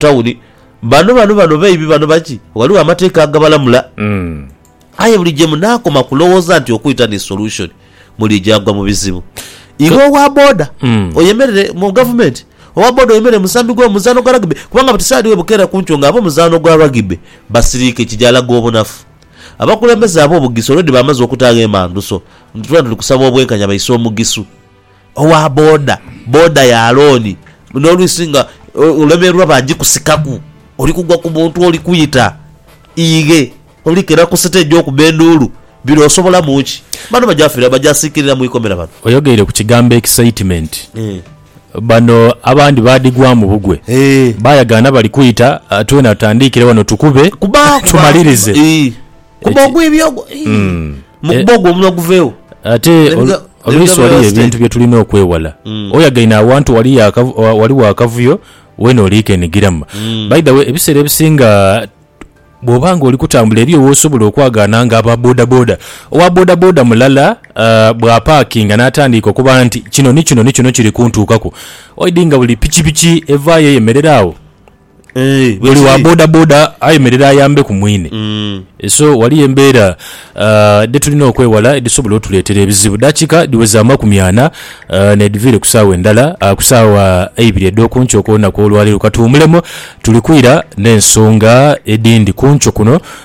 Tawuni. Bano, bano, bano baibi, bano baki? Ghaligho amateeka agabalamula. Aye buli gye munaakoma kulowooza nti okwita ni solution, muliija gwa mu bizibu. Iwe owa boda, oyemerere mu gavumenti, owa boda oyemerere mu musambi gw'omuzaano gwa rugby, kubanga buti saidi webukeera ku nkyo nga ab'omuzaano gwa rugby basiriike kigyalaga obunafu. Abakulembeze ab'obugisu already bamaze okutaagho emanduso nti twena tuli kusaba obwenkanya baise omugisu. owa boda boda ya looni nolwisi nga olemererwa bajikusikaku oli kugwa ku muntu oli kwita ighe oli kera ku siteegi okuba enduulu bino osobolamu ki? Bano bajafira bajasikirira mu ikomera bano. Oyogeire ku kigambo excitement. Bano abandi badhigwamu bugwe Eeh. bayagaana bali kwita twena tutandiikire wano tukube Kuba kuba tumalirize. Eeh. kuba Eki- ogwibya ogwo Ih, Mm. mu kuba ogwo omunwa guveewo ate Let me ol- go- let me oluusi go waliyo real estate. ebintu byetulina okwewala oyagaine awantu wali yakavu- wa- waliwo akavuyo wena oliikenigiramu by the way ebiseera ebisinga bwoba nga oli kutambula eriyo wosobola okwagaana nga aba bodaboda owa bodaboda mulala ah, bwapaakinga n'atandiika okuba nti kino ni kino ni kino kiri kuntuukaku oidi nga buli pikipiki evaayo eyemerera awo Eeh, buli wa bwekiri. bodaboda ayemerere ayambe ku mwine. Mm. So waliyo embeera ah, dhetulina okwewala edhisobola otuleetera ebizibu. Dakika dhiweza amakumi ana ah, nedhiviire ku saawa endala ah, ku saawa eibiri edh'oku nkyo ku lunaku olwaleero. Katuwumulemu, tuli kwira n'ensonga edhindi ku nkyo kuno.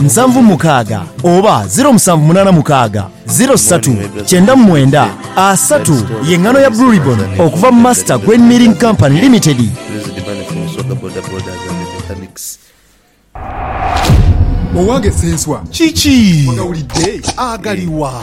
nsanvu mukaaga oba ziro musanvu munaana mukaaga ziro satu kyenda mu mwenda asatu ye ngano ya Blue Ribbon okuva mu Master Grain Milling Company Limited. Owange Ssenswa kiki ogawulidde agaliwa?